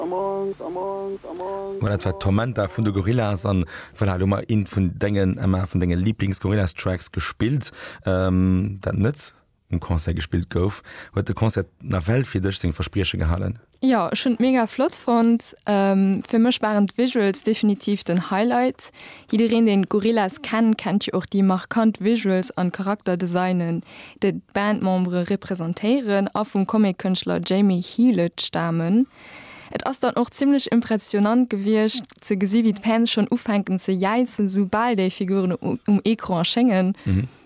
Mä dat war Tormenta vun de Gorillaz an voilà, elo mar een vun dengen Emma vun denge Lieblingsgorillas Tracks gespillt ähm, dat net um Concert gespillt gouf. Huet de Concert nawell fir dech seng Versprieche gehalen? Jo, ech hunn et mega flott fonnt. Fir mech waren d'Visuals definitiv den Highlight. Jiddereen deen d'Gorillaz kennt, kennt jo och déi markant Visuals an Charakterdesignen. déi d'Bandmembere representéieren a vum Comic-Kënschtler Jamie Hewlett stamen. Et ass dann och zimmlech impressionnant gewiescht ze gesi wéi d'Fans schonn ufänken ze jäizen, sou bal déi Figuren um Ecran erschéngen.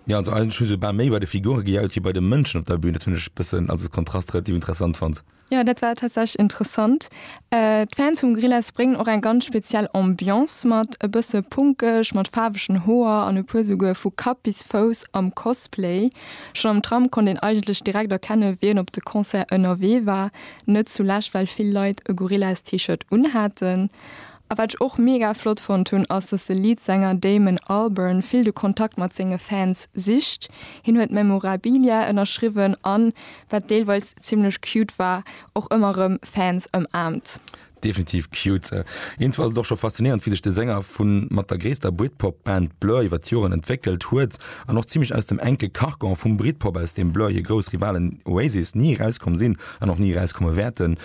Jo, also eigentlech hu se bal méi bei de Figure gejaut wéi bei de Mënschen op der Bühn. Dat hunn ech e bëssen als Kontrast relativ interessant fonnt. Jo dat war tatsächlech interessant. D'Fans vum Gorillaz bréngen och eng ganz speziell Ambiance mat, e bësse punkeg, mat faarwegen Hoer an e puer souguer vu Kapp bis Fouss am Cosplay. Schonn am Tram konnt een eigentlech direkt erkenne wien op de Concert ënnerwee war, net zulescht well vill Leit e Gorillaz-T-Shirt unhaten. A wat ech och mega flott fonnt hunn ass, dass de Leadsänger Damon Albarn vill de Kontakt mat senge Fans sicht. Hien huet Memorabilia ënnerschriwwen an, wat deelweis zimmlech cute war, och ëmmer rëm Fans ëmaarmt. Definitiv cute. Iergendwou ass et och scho faszinéierend, wéi sech de Sänger vu mat der gréisster Britpop-Band Blur iwwer d'Joren entwéckelt huet an och zimmlech aus dem enke Carcan vum Britpop, aus deem Blur hir grouss Rivalen Oasis ni erauskomm sinn an och ni erauskomme wäerten.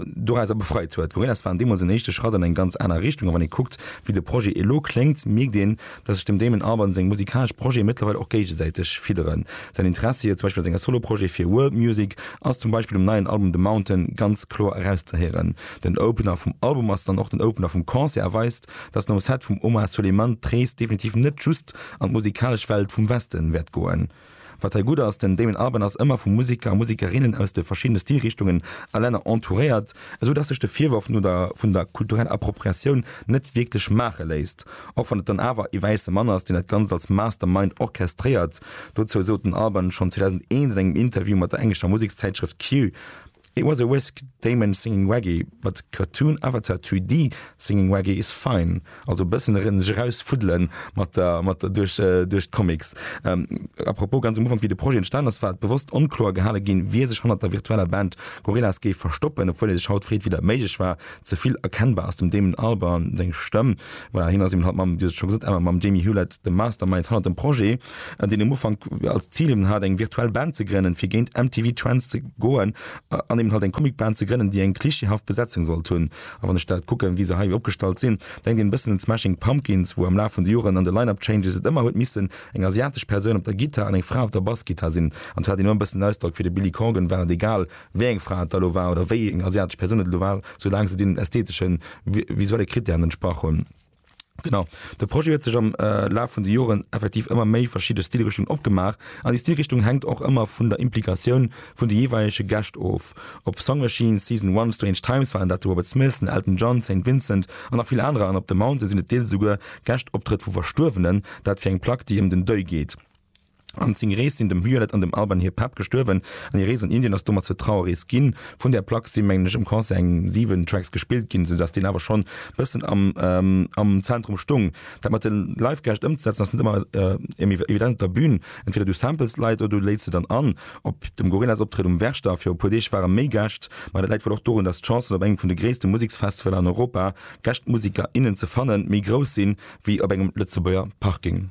dorauser befreit huet. Gorillas waren deemools en éischte Schratt an eng ganz aner Richtung a wann ee kuckt, wéi de Projet elo kléngt, mierkt een, dass sech dem Damon Albarn seng musikalesch Projete mëttlerweil och géigesäiteg fidderen. Säin Interessi, zum Beispill a senger Solo-Projete fir World Music, ass zum Beispill um neien Album The Mountain ganz kloer erauszehéieren. Den Opener vum Album ass dann och den Opener vum Concert a weist, dass nom Set vum Omar Souleyman d'Rees definitiv net just an d'musikalesch Welt vum Westen wäert goen. Wat hei gutt ass, den Damon Albarn ass ëmmer vu Museker a Musekerinnen aus de verschiddene Stilrichtungen a Länner entouréiert, esou dass sech de Virworf no der vun der kultureller Appropriatioun net wierklech maache léisst, och wann et dann awer ee wäisse Mann ass, deen dat Ganzt als Mastermind orchestréiert. Dozou sot den Albarn schonn 2001 an engem Interview mat der englescher Musekszäitschrëft Q, It was a whisk, Damon singing Waggy, but cartoon avatar 3D singing Waggy is fine. Also bëssen erëm sech eraus fuddelen mat der mat der duerch duerch d'Comics. A propos, ganz um Ufank wéi de Projet entstan ass, war et bewosst onkloer gehale ginn, wie sech hannert der virtueller Band Gorillaz géif verstoppen, obwuel ee sech haut freet wéi dat méiglech war. Ze vill erkennbar ass dem Damon Albarn seng Stëmm. Voilà, hien ass eben haut mam, Dir hutt et scho gesot, Emma, mam Jamie Hewlett de Mastermind hannert dem Projet. an deen um Ufank als Zil eben hat, eng virtuell Band ze grënnen, fir géint MTV Trends ze goen an eben halt eng Comicband ze grënnen, déi eng klischeehaft Besetzung sollt hunn. A wann ech dat kucken, wéi se hei opgestallt sinn, denkt een e bëssen un d'Smashing Pumpkins, wou am Laf vun de Joren an de Line-Up-Changes et ëmmer huet missen eng asiatesch Persoun op der Gittar an eng Fra op der Bassgittar sinn. An et hat een ëmmer e bëssen den Ausdrock, fir de Billy Corgan war et egal, wéi eng Fra et da elo war oder wéi eng asiatesch Persoun et elo war, soulaang se deenen ästheteschen, visuelle Krittären entsprach hunn. Genau, de Projet huet sech am Laf vun de Joren effektiv ëmmer méi verschidde Stilrichtungen opgemaach, an déi Stilrichtung hänkt och ëmmer vun der Implikatioun vun de jeeweilege Gäscht of, op Song Machine, Season One, Strange Times waren dat de Robert Smith, den Elton John, Saint Vincent an nach vill anerer, an op The Mountain sinn et deels esouguer Gäschtoptrëtt vu Verstuerwenen, dat fir eng Plack déi ëm den Deuil geet. An seng Rees sinn dem Violet an dem Alban hir Papp gestuerwen, an hir Rees an Indien ass domat zur Trauerrees ginn. Vun där Plack si mengen ech um Concert eng 7 Tracks gespillt ginn, sou dass deen awer schonn bëssen am Zentrum stung. Dat mat de Live-Gäscht ëmzesetzen ass net ëmmer evident op der Bün, entweder du samples Leit oder du léits se dann an. Op dem Gorillaz-Optrëtt um Werchter viru puer Deeg ware méi Gäscht, ma dat läit wuel och dorun, dass d'Chancen op engem vun de gréisste Museksfestivaler an Europa, Gäschtmuseker, innen ze fannen, méi grouss sinn, wéi op engem Lëtzebuerger Parking.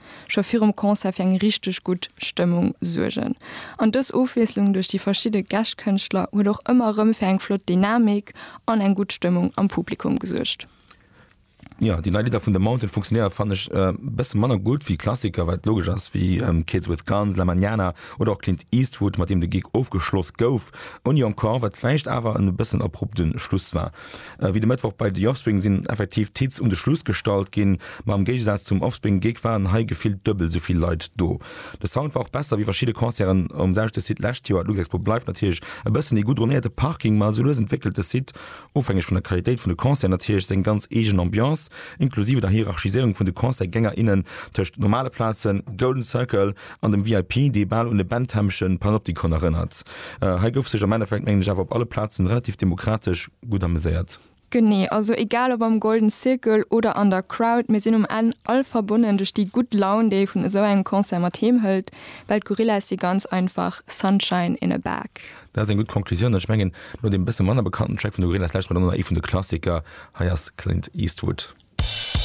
scho virum Concert fir eng richteg gutt Stëmmung suergen. An dës Ofwiesslung duerch déi verschidde Gäscht-Kënschtler huet och ëmmer erëm fir eng flott Dynamik an eng gutt Stëmmung am Publikum gesuergt. Jo, déi nei Lidder vun The Mountain funktionéiere fannen ech e bësse manner gutt wéi Klassiker, wat logesch ass, wéi Kids With Guns, La Mañana oder och Clint Eastwood, mat deem de Gig ofgeschloss gouf. Ouni Encore, wat vläicht awer en e bëssen abrupte Schluss war. Wéi de Mëttwoch bei The Offspring sinn effektiv d'Hits un de Schluss gestallt ginn, ma am Géigesaz zum Offspring-Gig waren hei gefillt duebel esou vill Leit do. De Sound war och besser wéi verschidde Concerten um selwechte Site d'lescht Joer. D'Luxexpo bleift natierlech e bëssen ee gutt dronéierte Parking, ma esou lues entwéckelt de Site, ofhängeg vun der Qualitéit vun de Concerten natierlech, seng ganz eegen Ambiance, inklusive der Hierarchiséierung vun de Concert-Gänger, innen tëscht normale Plazen, Golden Circle, an dem VIP, dee bal un e Benthemschen Panoptikon erënnert. Hei gouf sech am Endeffekt, mengen ech, awer op alle Plazen relativ demokratesch gutt ameséiert. Genee, also egal ob am Golden Circle oder an der Crowd, mir sinn um Enn all verbonnen duerch déi gutt Laun, déi ee vun esou engem Concert mat heem hëlt, well d'Gorillaz si ganz einfach Sunshine in a Bag. Dat ass eng gutt Conclusioun an ech mengen, no deem e bësse manner bekannten Track vun de Gorillaz, lauschtert mer dann och nach ee vun de Klassiker, hei ass Clint Eastwood.